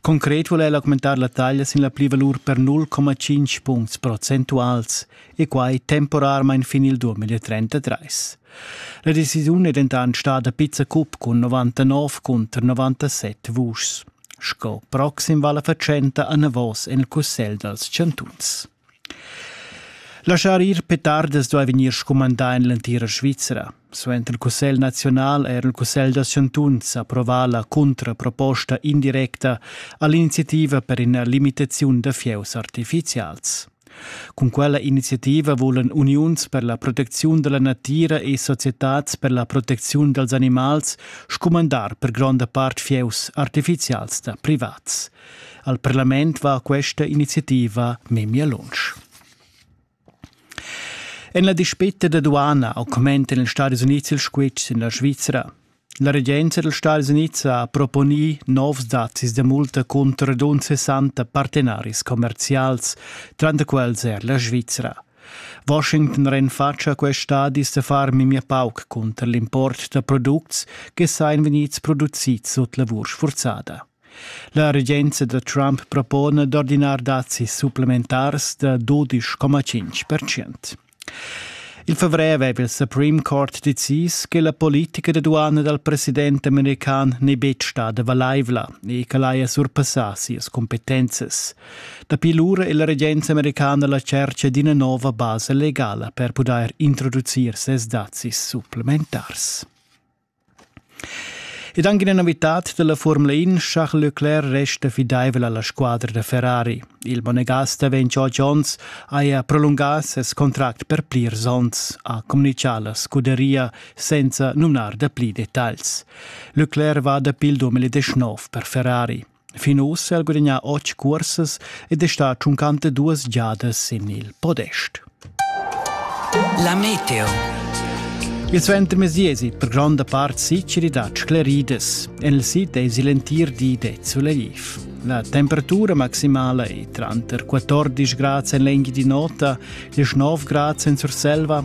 Concret vul el augmentar la taglia sin la plivalur per 0,5 puncts procentuals e quai temporarmain fin il 2033. La decisiun è dentant stada pizza cup cun 99 cunter 97 vuschs. Sco proxim va la fatschenta anavos en il cussegl dals chantuns. Laschar ir petardas duai vegnir scumandà en l'entira Svizra. Suenter il Cussegl naziunal era il Cussegl da chantuns approvà la cuntraproposta indirecta a l'iniziativa per ina limitaziun da fieus artifizials. Cun quella iniziativa vulan uniuns per la protecziun da la natira e societads per la protecziun dals animals scumandar per gronda part fieus artifizials da privats. Al parlament va questa iniziativa memia lunsch. En la dispetta da duana augmentan ils Stati Uniti il squitsch en la Svizzera. La regenza degli Stati Uniti ha proponì novs dazis da multa contro rund 60 partenaris commercials, tra i quals er la Svizzera. Washington renfatscha quest stadis da far memia pauc cunter l'import da products che sain vegnids produzids sut lavur sfurzada. La regenza da Trump propona d'ordinar dazis supplementars da dudisch coma tschintg percent. Il favrer aveva il Supreme Court decis che la politica da duana dal president american n'è betg stada valaivla e ch'el haja surpassà sias cumpetenzas. Dapi lura è la regenza americana la tschertga d'ina nova basa legala per pudair introducir ses dazis supplementars. Ed anche una novità della Formula In, Charles Leclerc resta fidaivel alla squadra da Ferrari. Il Bonegasta Vencio Jones haja prolungà ses contract per plirs onns, ha communichà la scuderia senza numnar da pli dettagls. Leclerc va dapi il 2019 per Ferrari. Fin ussa ha gudagnà otg cursas ed è stà tschuncante duas giadas sin il podest. La meteo. Il suentermezdi èsi per gronda part siciri dad scleridas. En il sid èsi l'entir di de suleliv. La temperatura maximala è tranter 14 grad en lengi di nota e 9 grad en Surselva